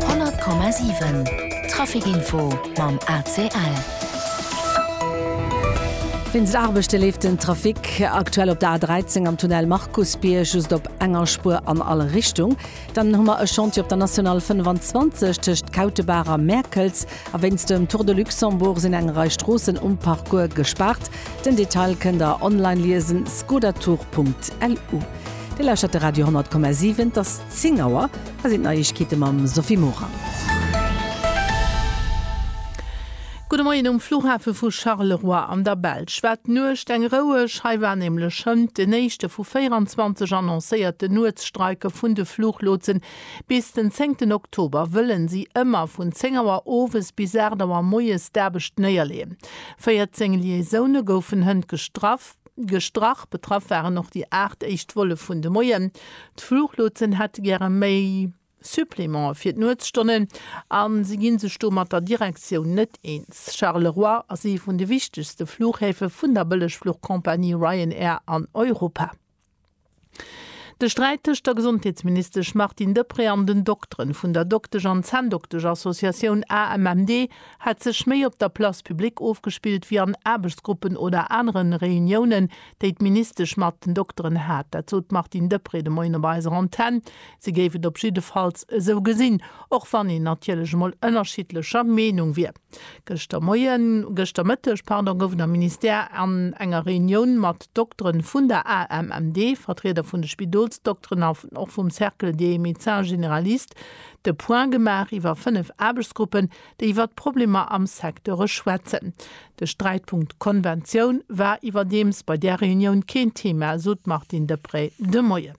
100,7 Traficinfo mam ACL. Wéinst Aarbechte leeft den Trafic aktuell op der A13 am Tunnel Markusbierg just op enger Spuer an all Richtung. Dann hu mer e Chantier op der National 25 tëscht Kautebaach a Mäerkels. A wéinst dem Tour de Luxembourg sinn eng Rei Stroossen um Parcours gespaart. Den Detail kënnt der online liesen, skodatour.lu. Dir lauschtert de Radio 10,7. 10 Auer, hei sinn d'Neiegkeete mam Sophie Morang. Gudde Moien um Flughafe vu Charleroi an der Belsch war d'Nuecht eng roueg. Hei war nämlech schënnt den éischte vu 24 annoncéierte Nuetsstreike vun de Fluchlotsen. Bis den zéngten Oktober wëlle si ëmmer vun 10 Auer owes bis 8 Auer moies d'Aarbecht néierleeën. 14 Liaisoune goufen hënt gestraff. Gestrach. Betraff waren och déi 8 éischt Volle vun de Moien. D'Fluchlotsen hätte gäre méi Supplémente fir d'Nuetsstonnen a si gi sech do mat der Direktioun net eens. Charleroi ass ee vun de wichtegste Fluchhäfe vun der Bëllegfluchcompagnie Ryanair an Europa. De Sträit tëscht der Gesondheetsministesch Martine Deprez an den Dokteren vun der Doktesch an Zänndokteschassociatioun AMMD hätt sech méi op der Place publique ofgespillt wéi an Aarbechtsgruppen oder anere Reuniounen, déi d'Ministesch mat den Dokteren hat. Dat sot d'Martine Deprez de Moien op eiser Antenn. Si géif et op jiddefalls esou gesinn, och wann een natierlech emol ënnerschiddlecher Meenung wier. Gëschter Moien, gëschter Mëtteg, pardon, gouf et am Ministère an enger Reunioun mat Doktere vun der AMMD, Vertrieder vun de Spidolsdokteren an och vum Cercle des médecins généralistes de Point gemaach iwwer fënnef Aarbechtsgruppen, déi iwwer d'Problemer am Secteure schwätzen. De Sträitpunkt Konventioun war iwwerdeems bei där Reunioun keen Thema, sot d'Martine Deprez de Moien.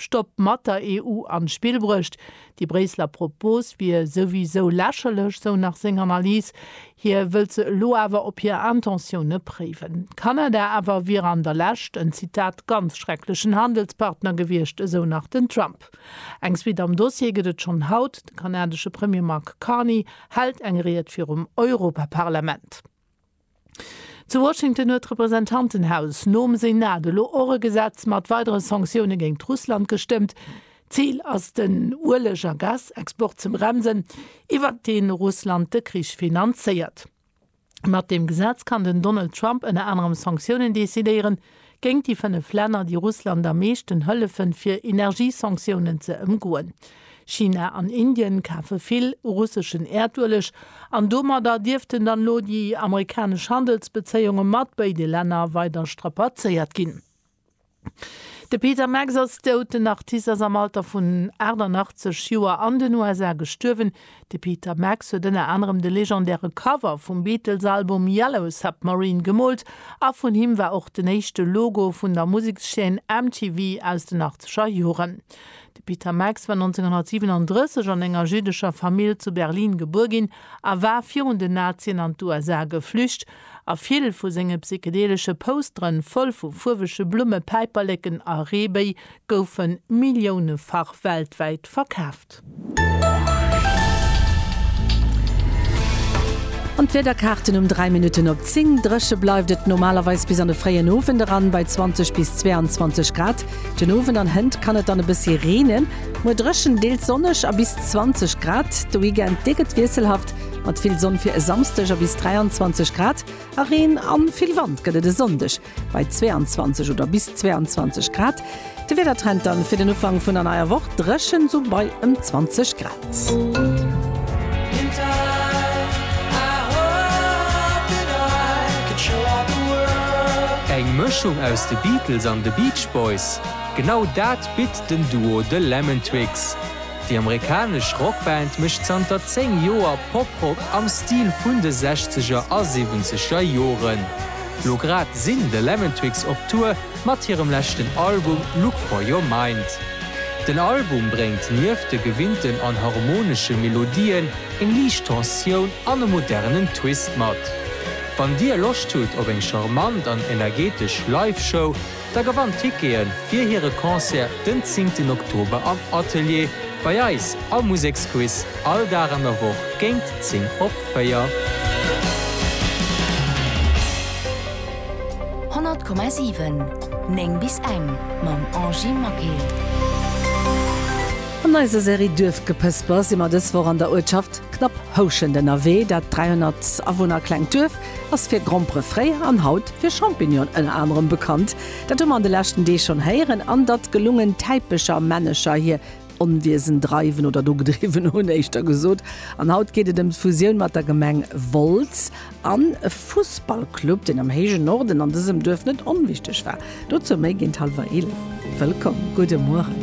Stopp mat der EU an d'Spill bruecht. Déi Bréisseler Propos wier souwisou lächerlech, sou nach seng Analys. Hie wëllt se elo awer op hir Intentioune préiwen. Kanada awer wier an der Lescht en, Zitat, ganz schrecklechen Handelspartner gewiescht, esou nach den Trump. Eng Suite am Dossier gëtt et schonn haut, De kanadesche Premier Mark Carney hält eng Ried virum Europaparlament. Zu Washington huet d'Representantenhaus nom Senat elo och e Gesetz mat weidere Sanktioune géint Russland gestëmmt. D'Zil ass den Ueleg a Gasexport ze bremsen, iwwert dee Russland de Krich finanzéiert. Mat deem Gesetz kann den Donald Trump ënner anerem Sanktiounen decidéieren, géint déi fënnef Länner, déi Russland am meeschten hëllefen, fir Energiesanktiounen ze ëmgoen. China an Indien kafe vill russeschen Äerdueleg an domadder dierften dann elo déi amerikanesch Handelsbezéiunge mat béide Länner weider strapazéiert ginn. De Peter Max ass dout. Den Artist ass am Alter vun 88 Joer an den USA gestuerwen. De Peter Max huet ënner anerem de legendäre Cover vum Beatles-Album Yellow Submarine gemoolt a vun him war och den éischte Logo vun der Musekschaîne MTV aus den achtzeger Joren. De Peter Max war 1937 an enger jiddescher Famill zu Berlin gebuer ginn a war virun den Nazien an d'USA geflücht, a vill vu senge psychedelesche Postere voll vu fuerwege Blumme, Päiperleken a Reebéi goufe milliounefach weltwäit verkaaft. An d'Wiederkaarten um 3 Minutten op 10, Dréche bleift et normalerweis bis an de fréien Owend eran bei 20 bis 22 Grad. Den Owend an Hënt kann et dann e bëssi reenen. Muer dréchen, deels sonneg a bis 20 Grad. De Weekend, dee gëtt wiesselhaft mat vill Sonn fir e Samsdeg a bis 23 Grad. A Reen a vill Wand gëtt et e Sonndeg. bei 22 oder bis 22 Grad. De Wiedertrend dann fir den Ufang vun der neier Woch dreschen sou bei ëm 20 Grad. Eng Mëschung aus de Beatles an de Beach Boys? Genau dat bitt den Duo The Lemon Twigs. Déi amerikanesch Rockband mécht zanter 10 Joer Poprock am Stil vun de Sechzeger a Siwwenzeger Joren. Lo grad sinn The Lemon Twigs op Tour mat hirem leschten Album Look For Your Mind. Den Album bréngt nieft de gewinnten an harmonesche Melodien eng liicht Tensioun an e modernen Twist mat. Wann dir Loscht hutt op eng charmant an energetesch Live-Show, Da gewannt Tickete fir hire Concert den 10 ten Oktober am Atelier bei eis am Museksquiz, all Dag an der Woch géint 10 op 4. Honnert Komma siwen, néng bis eng, mam Angie Maquet. An eiser Serie Duerfgepësper si mer dës Woch an der Uertschaft Knapphouschent ënnerwee. Dat 300 Awunner klengt Duerf ass fir Grompere fréier an haut fir Champignon ënner anerem bekannt. Dat hu mer an de leschten Deeg schonn héieren. An datt gelungen Täipecher, Männecher hir Onwiesen dreiwen oder do gedriwwen hunn, éischter gesot. An haut geet et ëm d'Fusioun mat der Gemeng Wolz an e Fussballclub, deen am héijen Norden an dësem Duerf net onwichteg war. Dozou méi géint hallwer eelef. Wëllkomm, gudde Mueren.